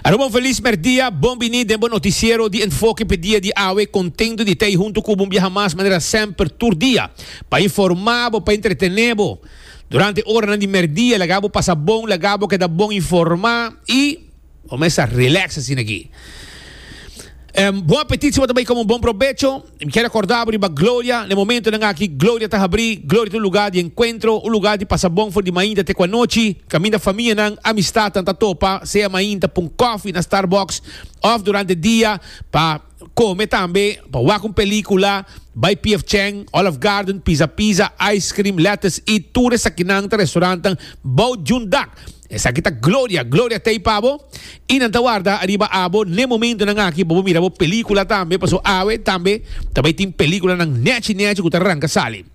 Aroba un feliz merdia, bon bini den bo noticiero di Enfoke p'e dia di awe. Contento di ta ei hunto cu bo un biaha mas manera semper tur dia pa informa bo, pa entretene bo durante oranan di merdia. Laga bo pasa bon, laga bo keda bon informa y bo mester relax asina aki. Bon apetit si bo ta bay come un bon probecho. Mi kier a korda bo riba Gloria. Na e momentonan aki, Gloria ta habrí. Gloria ta un lugá di enkuentro, un lugá di pasa bon for di mainta te ku anochi. Kaminda famianan, amistatnan ta topa, sea mainta pa un kòfi na Starbucks òf durante dia pa kome tambe, pa wak un pelíkula, bai PF Chang, Olive Garden, Pizza Pizza, Ice Cream, Lettuce Eat. Tur esakinan ta restorantnan bou djunt dak. Esaki ta gloria, gloria t'ei pa bo, i nan ta warda ariba abo n'e momentonan aki pa bo mira bo pelíkula tambe, paso awe tambe ta bai tin pelíkulanan nèchi nèchi ku ta ranka sali.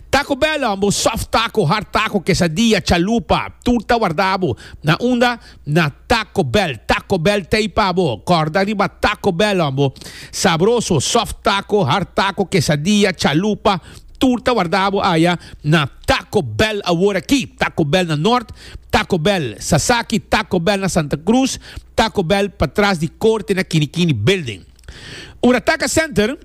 Taco Bell homb'o, soft taco, hard taco, quesadilla, chalupa, tur ta warda abo na unda? Na Taco Bell, Taco Bell t'ei pa bo, kòrda riba Taco Bell homb'o, sabroso, soft taco, hard taco, quesadilla, chalupa, tur ta warda abo aya na. Taco Bell awor aki, Taco Bell na Nort, Taco Bell Sasaki, Taco Bell na Santa Cruz, Taco Bell patras di Corte na Kinikini Building. Ora Taca Center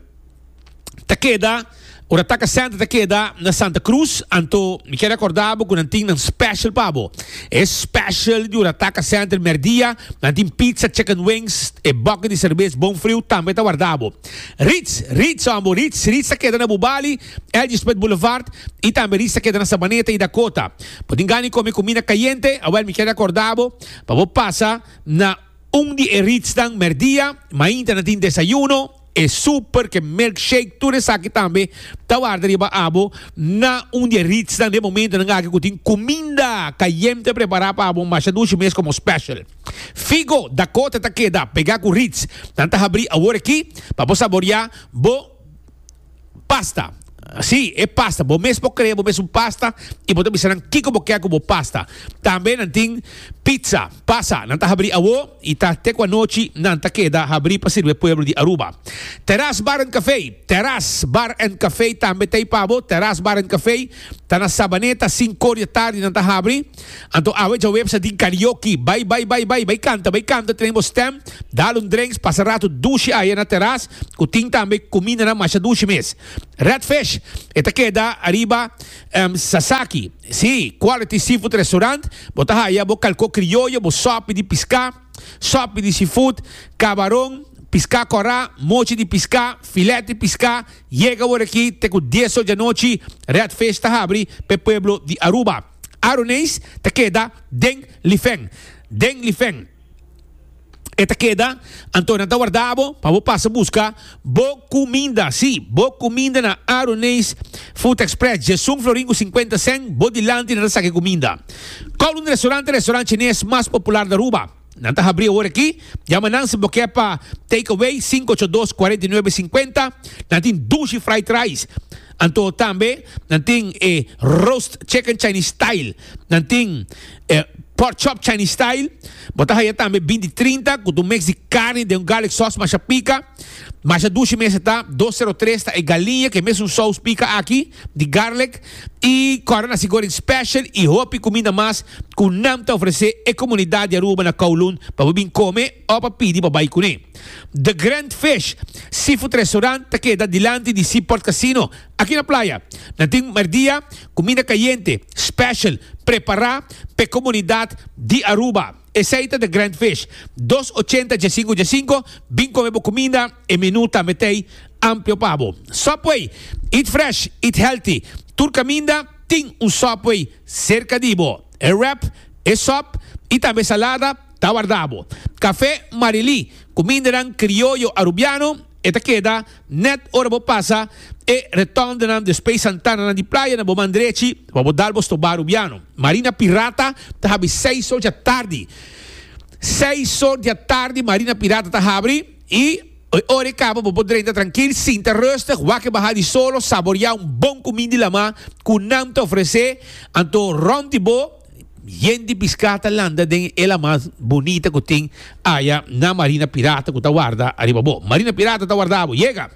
ta keda Ora Taca Center ta keda na Santa Cruz, anto mi kere acorda bo cu nan tin nan special pa bo. E special di Ora Taca Center merdia, nan tin pizza, chicken wings, e bucket di cerbes bon friu tambe ta warda bo. Ritz, Ritz hombo, Ritz, Ritz ta keda na Bubali, Elgisbert Boulevard y tambe Risa keda na Sabaneta y Dakota. Bo tin gana di come cumina cayente? Awel mi kier recorda bo pa bo pasa na un di e Ritznan merdia, mainta na tin desayuno, e super ke milkshake tur esaki tambe ta warda riba abo na un di e Ritznan den momentonan aki cu tin cuminda cayente prepara pa abo masha dushi mes como special. Figo Dakota ta keda pega cu Ritz. Nan ta habri awor aki pa bo saboria bo. Pasta. Sí, e pasta. Bo mes por crea bo mes un pasta y bo ta bisa nan kico bo kier cu bo pasta. Tambe nan tin pizza, pasa. Nan ta habri awo y ta te cu anochi nan ta keda habri pa sirbi e pueblo di Aruba. Terras Bar and Cafe. Terras Bar and Cafe tambe ta ey pa bo. Terras Bar and Cafe ta na Sabaneta, cinco or di tardi nan ta habri. Anto awe djawebsa di karaoke. Bai bai bai bai bai kanta bai kanta tren bo stem, dal un drenks pasa ratu dushi aya na teras ku tin tambe kumindanan masha dushi mes. Red Fish e ta keda ariba em Sasaki. Si, Quality Seafood Restaurant, bo ta haya bo kalko krioyo, bo sòpi di piská, sòpi di seafood, kabaron, piská kòrá, mochi di piská, filèt di piská, yega wor aki te ku dies or di anochi, Red Fish ta habri p'e pueblo di Aruba. Aronees ta keda den lifen, den lifen e ta keda, anto nan ta warda bo pa bo pasa buska bo kuminda, sí, bo kuminda na Aronees Food Express, dje sun florin ku sinkuenta sèn, bo dilanti nan ta saka e kuminda. Kowloon Restaurant ta restaurant chinees mas popular na Aruba. Nan ta habrí awor akí. Yama nan si bo ke pa takeaway sinku ocho dos kuarenta i nuebe sinkuenta. Nan tin dushi fried rice. Anto tambe nan tin e roast chicken Chinese style. Nan tin e pork chop Chinese style. Bo ta haya tambe bin di trinta ku un mix di karni den un garlic sauce masha pika. Masha dushi mester ta dos sero tres ta e galiña ku e mesun sous pika aki. di garlic y cora nasi goreng special y hopi cuminda mas cu nan ta ofrece e comunidad di Aruba na Kowloon pa bo bin come o pa pidi pa bay cune. The Grand Fish Seafood Restaurant ta keda dilanti di Seaport Casino aki na playa. Nan tin merdia cuminda cayente special prepara p'e comunidad di Aruba. Esei ta The Grand Fish, dos ochenta dje sinku dje sinku, bin kome bo kuminda, e menu ta metei amplio pa bo. Subway, Eat fresh, eat healthy, tur kaminda tin un Subway serka di bo. E wrap, e sòp i tambe e salada ta wardabo. Kafé Marilí, kumindanan krioyo Arubiano. E ta keda nèt ora bo pasa e retondenan di Space Santananan di playa na bo man drechi pa bo dal bo stobá Rubiano. Marina Pirata ta habri seis or dja tardi. Seis or dja tardi Marina Pirata ta habri i e ora e kaba bo por drenta trankil, sinta rustig, wak e bahá di solo, saboriá un bon kumin di lamá ku nan ta ofresé anto rònt di bo. Yen di piská ta landa den e ela mas bunita ku tin aya na Marina Pirata ku ta warda ariba bo. Marina Pirata ta warda bo. Yega!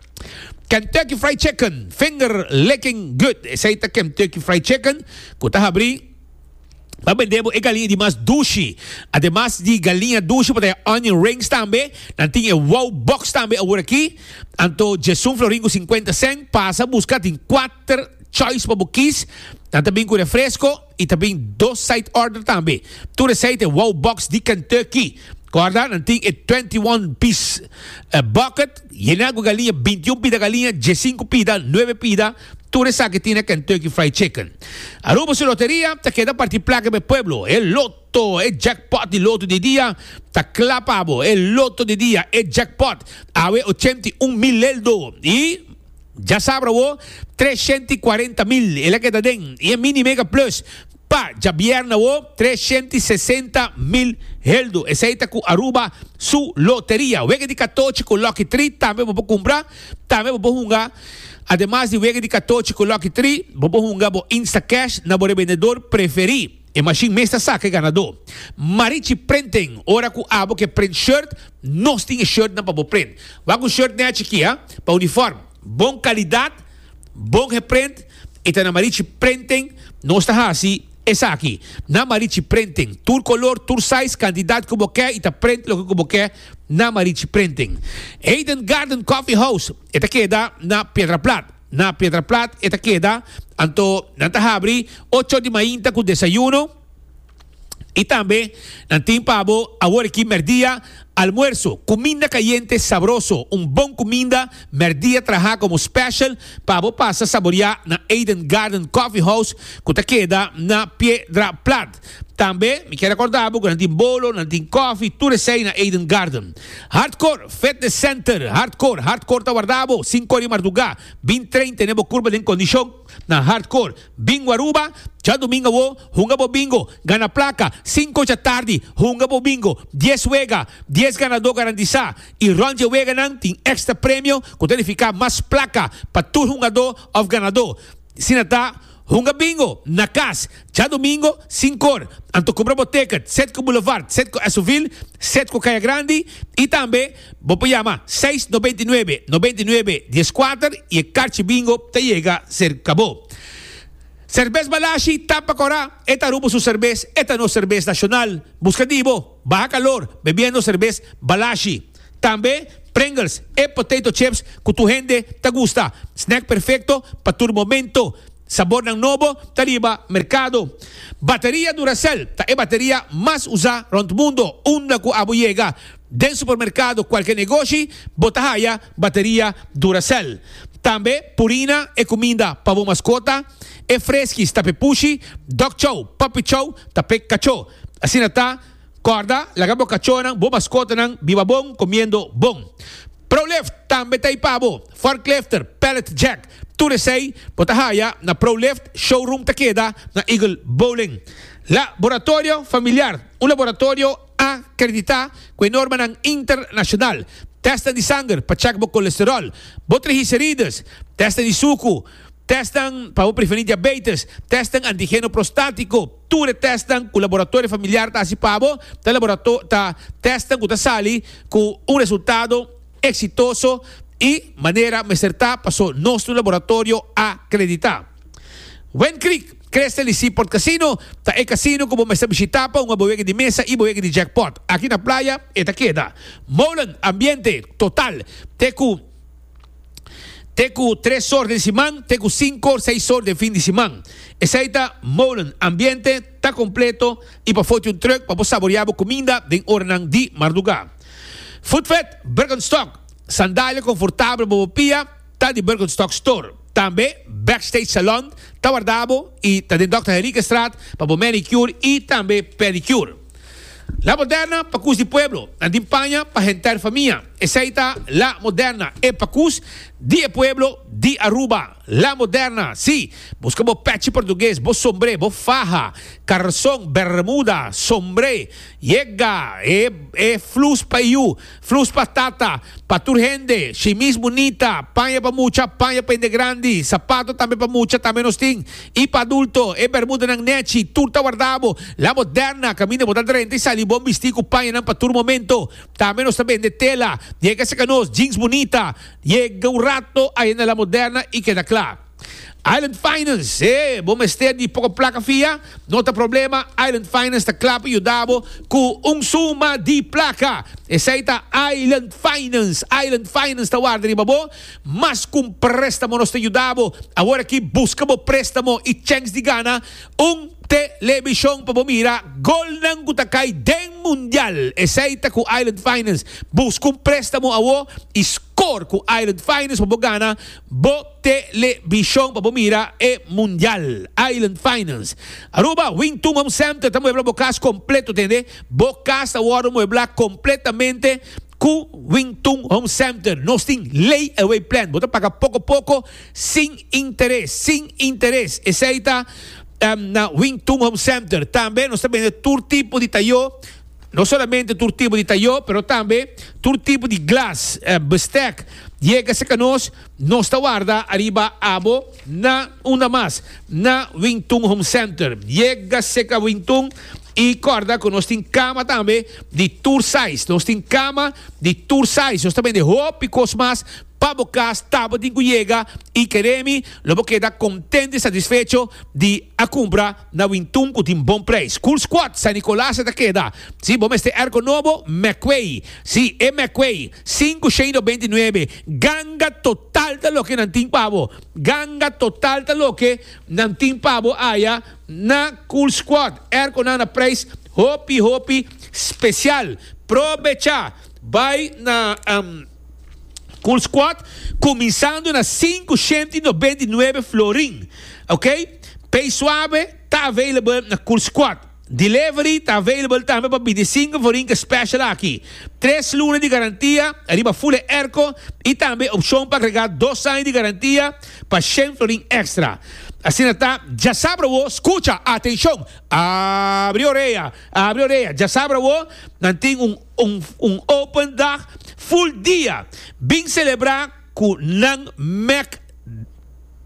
Kentucky Fried Chicken, finger licking good. Esei ta Kentucky Fried Chicken ku ta habrí pa bendé bo e galiña di mas dushi. Ademas di galiña dushi por ta e onion rings tambe. Nan tin e wow box tambe awor aki. Anto Jason Florin ku sinkuenta sènt pasa buska. Tin kuater choice pa bo kis. Nan ta bin ku refresko. I ta bin dos side order tambe. Tur esei ta e wow box di Kentucky. Corda, nan tin e twenty one piece bucket, yena cu galiña, binti y un pida galiña, dje sinku pida, nuebe pida, tur esaki tin e Kentucky Fried Chicken. Aruba su loteria ta keda parti placa pa e pueblo. E loto, e jackpot di loto di dia ta cla pa bo. E loto di dia, e jackpot, awe ochenta y un mil leldo. Y. Dja sabra wo, tres shente i kuarenta mil e la keda den i e Mini Mega Plus pa djabièrna wo, tres shente i sesenta mil heldu. Esei ta ku Aruba su loteria. Wega di katochi ku Lucky Three tambe bo por kumpra, tambe bo por hunga. Ademas di wega di katochi ku Lucky Three, bo por hunga bo Instacash na bo rebendedor preferí. E mashin mes ta saka e ganadó. Marichi Printing, ora cu abo ke print shirt, nos tin e shirt nan pa bo print. Wak un shirt nea chiki a, pa uniform. Bon calidad, bon geprint, e ta na Marichi Printing nos ta haci esaki. Na Marichi Printing, tur color, tur size, cantidad cu bo ke y ta print loke cu bo ke na Marichi Printing. Eden Garden Coffee House, e ta keda na Piedraplat. Na Piedraplat e ta keda, anto nan ta habri ocho di mainta ku desayuno i tambe nan tin pa bo awor aki mèrdia, almuerso, kuminda kayente sabroso, un bon kuminda mèrdia traha komo special pa bo pasa saboriá na Eden Garden Coffee House ku ta keda na Piedraplat. Tambe mi ke rekorda bo ku nan tin bolo, nan tin kòfi, tur esei na Eden Garden. Hardkor Fitness Center, Hardkor, Hardkor ta warda bo, sinku ora di mardugá, bin train tene bo kurpa den kondishon na Hardkor. Bingo Aruba, Djadumingu awo, hunga bo bingo, gana plaka, sinku ocha tardi, hunga bo bingo, dies wega, dies ganadó garantisá, i rònt dje weganan tin èkstra premio ku ta nifiká mas plaka pa tur hungadó òf ganadó, si nan ta. Hunga bingo na cas djadomingo sinkor. Anto cumpra bo ticket sed cu Boulevard, sed cu Esovil, sed cu Caya Grandi y tambe bo por yama seis noventa y nuebe noventa y nuebe dies cuater y e carchi bingo ta yega cerca bo. Serbes Balashi, Tampa Cora, e ta Rubo su serbes, e ta nos serbes nacional. Busca di bo. Baha kalor bebiendo serbes Balashi. Tambe Pringles e potato chips cu tur hende ta gusta. Snack perfecto pa tur momento. Sabornan nobo ta riba mercado. Bateria Duracell ta e bateria mas usa rond mundo. Unda cu abo yega, den supermercado, cualkier negoshi, bo ta haya bateria Duracell. Tambe Purina e cuminda pa bo mascota. E freskis ta p'e pushi, dog chow, puppy chow ta p'e kachó. Asina ta, kòrda, laga bo kachónan, bo maskotanan, biba bon, komiendo bon. Prolift tambe ta ei pa bo. Forklifter, pallet jack, tur esei bo ta haya na Prolift, showroom ta keda na Eagle Bowling. Laboratorio familiar, un laboratorio A kreditá ku e normanan internashonal. Tèstnan di sanger pa chèk bo kolesteròl, bo trigiserides, tèstnan di suku, tèstnan pa bo prevení diabeites, tèstnan antigeno prostátiko. Tur e tèstnan ku laboratorio familiar ta hasi pa bo ta laborato ta tèstnan ku ta sali ku un resultado eksitoso i manera mester ta paso nostru laboratorio a kreditá. Wend Creek, Crest'en di Seaport Casino, ta e casino cu bo mester bishita pa hunga bo wega di mesa y bo wega di jackpot. Aki na playa e ta keda. Molen, Ambiente, Total, te cu te cu tres sor den siman te cu cinco or seis sor den fin di siman. Esey ta Molen, Ambiente, ta completo y pa foti un truck pa bo saborea bo cuminda den oranan di marduga. Footfed, Birkenstock, Sandalia confortabel pa bo pia. ta di Birkenstock Store. Tambe Backstage Salon ta warda bo y ta den Dòkter Henriquestraat pa bo manicure y tambe pedicure. La Moderna pa Cus di Pueblo, nan tin paña pa henter famia. Esey ta La Moderna, e pa cus di e pueblo di Aruba. La Moderna, si, busca bo pechi portugues, bo sombre, bo faha, carson, bermuda, sombre, yega, e flus pa e yu, Flus pa tata, pa tur hende, shimis bunita, paña pa mucha, paña pa hende grandi, sapato tambe pa mucha tambe nos tin, i pa adulto, e bermudanan nechi, tur ta warda bo, la bo derna, kaminda bo ta drenta i sali bon bisti ku pañanan pa tur momento, tambe nos ta bende tela, yega seka nos, jeans bunita, yega un rato ayanda la moderna i keda kla. Island Finance, he, bo mester di poko plaka fia? No ta problema, Island Finance ta kla pa yuda bo ku un suma di plaka. Esei ta Island Finance. Island Finance ta warda riba bo mas ku un préstamo. Nos ta yuda bo awor aki buska bo préstamo i chèns di gana un telebishon pa bo mira golnan ku ta kai den mundial. Esei ta ku Island Finance. Buska un préstamo awor i skor ku Island Finance pa bo gana bo. Telebishon pa bo mira e mundial. Island Finance. Aruba, Wingtun Home Center ta muebla bo kas kompleto, tende. Bo kas ta wòrdu muebla kompletamente ku Wingtun Home Center. Nos tin layaway plan, bo ta paga poko poko sin interes, sin interes. Esei ta na Wingtun Home Center. Tambe nos ta bende tur tipo di tayó, no solamente tur tipo di tayó, pero tambe tur tipo di glas, bestek. Yega serka nos. Nos ta warda ariba abo na unda mas, na Wing Tun Home Center. Yega cerca Wing Tun y corda cu nos tin cama tambe di tur size. Nos tin cama di tur size. Nos ta bende hopi cos mas pa bo cas ta bo tin cu yega y cree mi lo bo keda contento y satisfecho di a cumpra. na Wintun cu tin bon prijs. Cool Squad San Nicolas e ta keda. Si bo mester erco nobo, Meckway. Si, e Meckway. Cinco shade of beinti nuebe. Ganga total ta loke nan tin pa bo. Ganga total ta loke nan tin pa bo aya na Cool Squad. Erconan na prijs hopi hopi special. Probecha! Bay na. Cool Squad cuminsando na sinku shent i nobent i nuebe florin ok Pay Suabe ta available na Cool Squad Delivery ta available tambe pa bintisinku for Inca Special aki tres luna di garantia riba fule erco i tambe opcion pa agrega dos aña di garantia pa shen florin extra asina ta dja sab awo scucha atencion abri orea abri orea dja sab awo nan tin un Un un open dag full dia bin celebra cu nan Mac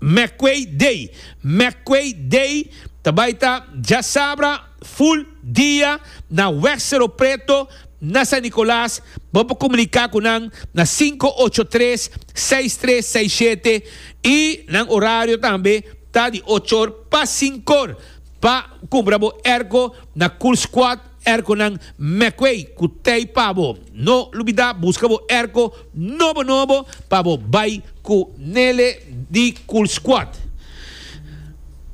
McQuay Day. McQuay Day ta bay ta djasabra full dia na Weg Cerro Preto na San Nicolas. Bo por comunica cu nan na cinco ocho tres seis tres seis siete y nan horario tambe ta di ochor pa cincor pa cumbra bo ergo na Cool Squad. Erco nan Meckway cu tey pa bo. No lubida busca bo erco nobo nobo pa bo bay cu Nele di Cool Squad.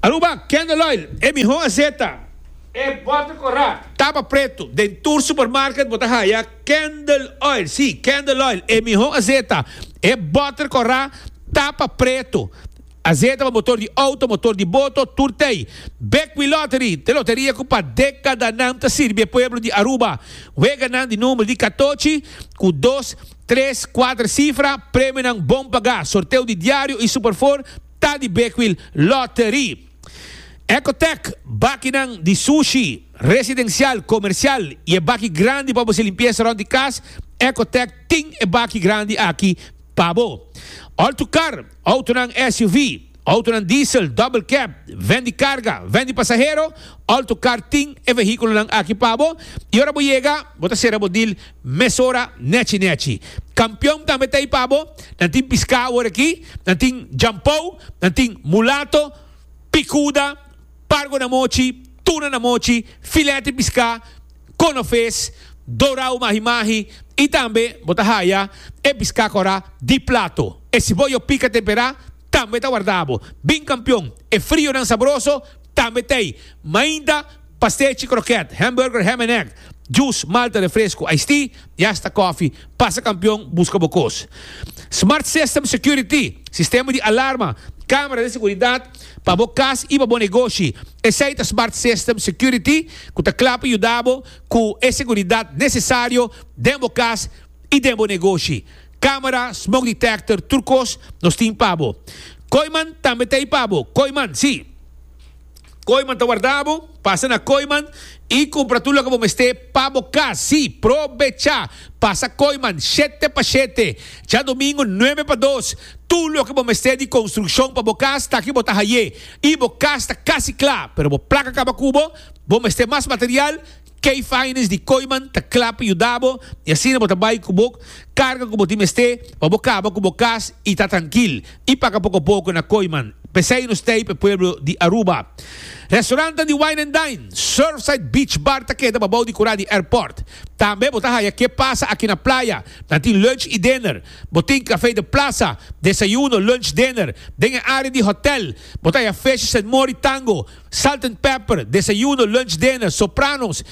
Aruba, Candle Oil, e miho aseta. E bota cora. Tapa preto, den tur supermarket bo ta haya Candle Oil, si, Candle Oil, e miho aseta. E bota cora, tapa preto. Azeta pa motor di outo, motor di boto, tur t'ei. Bekwin Lottery, te loteria ku pa dekadanan ta sirbi e pueblo di Aruba. Weganan di number di katochi, ku dos, tres, kuater sifra, premionan bon pagá. Sorteo di diario i Super Four ta di Bekwin Lottery. Ecotec, bakinan di sushi, residencial, comercial i e baki grandi pa bo hasi limpiesa rond di kas, Ecotec tin e baki grandi aki pa bo. Altocar. Outonan SUV, outonan diesel, double cab, ven di carga, ven di pasahero, alto car tin e vehiculonan aki pa bo y ora bo yega bo ta cera bo deal mesora nechi nechi. Campeon tambe ta ey pa bo, nan tin pisca awor aki, nan tin jampou, nan tin mulato, picuda, pargo na mochi, tuna na mochi, filet di piská, konofes, dorau mahi mahi i tambe bo ta haya e piská kora di plato. E siboyo pika temperá tambe ta wardabo bin kampion. E frionan sabroso tambe t'ei. Mainta pastechi krokèt, hamburger, ham en egg, jus, malta, refresku, iced tea i asta kòfi. Pasa kampion buska bo kos. Smart System Security, sistema di alarma, kámara di seguridat, pa bo cas y pa bo negoshi. Esey ta Smart System Security cu ta cla pa yuda bo cu e seguridad necesario den bo cas y den bo negoshi. Camera, smoke detector, tur cos nos tin pa bo. Kooiman tambe ta ey pa bo. Kooiman, si. Kooiman ta warda bo. Pasa na Kooiman y cumpra tur loke bo mester pa bo cas. Si, probecha! Pasa Kooiman, shete pa shete, djadomingu nuebe pa dos, tur loke bo mester di construccion pa bo cas ta aki bo ta haye y bo cas ta casi cla pero bo placa caba cubo, bo mester mas material, Key Finance di Kooiman ta cla pa yudabo y asina bo ta bay cu bo carga cu bo tin mester pa bo caba cu bo cas y ta trankil, y paca poco poco na Kooiman. P'esey nos t'ey p'e pueblo di Aruba. Restaurantan di Wine and Dine, Surfside Beach Bar ta keda babao di cura di airport. Tambe bo ta haya ke pasa aki na playa. Nan tin lunch y dinner. Bo tin cafe de plaza, desayuno, lunch, dinner. Den e area di hotel bo ta haya Fish, Saint Mori, Tango, Salt and Pepper, desayuno, lunch, dinner, Sopranos,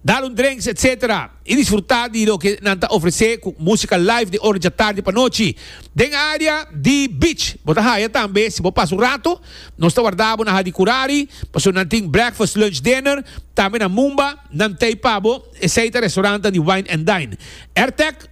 dal un drenks etc. I disfrutá di loke nan ta ofresé ku músika live di ora dja tardi pa nochi. Den área di Beach bo ta haya tambe si bo pasa un ratu. Nos ta warda bo na Hadi Kurari pasobra nan tin breakfast, lunch, dinner. Tambe na Mumba nan tei pa bo. Esei ta restaurantan di wine and dine. Rtec.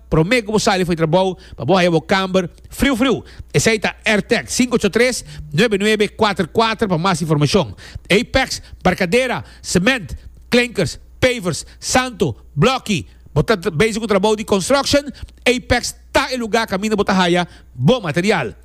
Prome ku bo sali for di trabou pa bo haya bo kamber friu friu, esei ta Airtech sinku ocho tres, nuebe nuebe kuater kuater pa mas informashon. Apex, barkadera, sement, klinkers, pavers, santo, blòki, bo ta bezig ku trabou di construction, Apex ta e lugá kaminda bo ta haya bo material.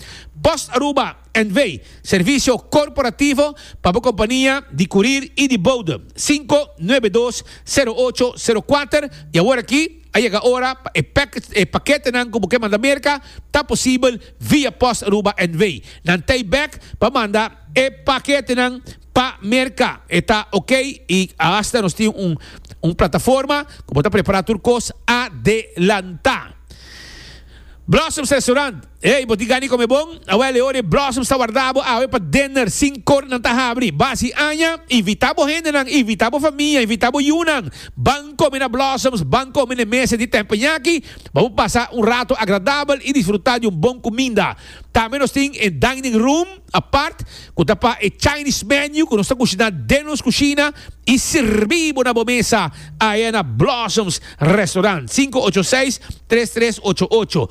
Post Aruba. NV, Servisio korporativo pa bo kompania di kurir i di bodem, sinku nuebe dos sero ocho sero kuater. I awor aki a yega ora pa e packets, e paketenan ku bo ke manda Merka, ta posibel via pos Aruba NV. Nan tei bek pa manda e paketenan pa Merka. E ta ok i asta nos tin un un plataforma ku bo ta prepará tur kos adelantá. Blossoms Restaurant. Ey, bo tin gana di come bon? Awel, e ora e blossoms ta warda bo awe pa dinner, sin cor nan ta habri. Basi aña, invita bo hendenan, invita bo famia, invita bo yunan. Ban come na blossoms, ban come n'e mesa di Teppanyaki. Bo por pasa un rato agradabel y disfruta di un bon cuminda. Tambe nos tin e dining room apart, cu ta pa e Chinese menu cu nos ta cushina den nos cushina y sirbi bo na bo mesa awe na Blossoms Restaurant, sinku ocho seis, tres tres ocho ocho.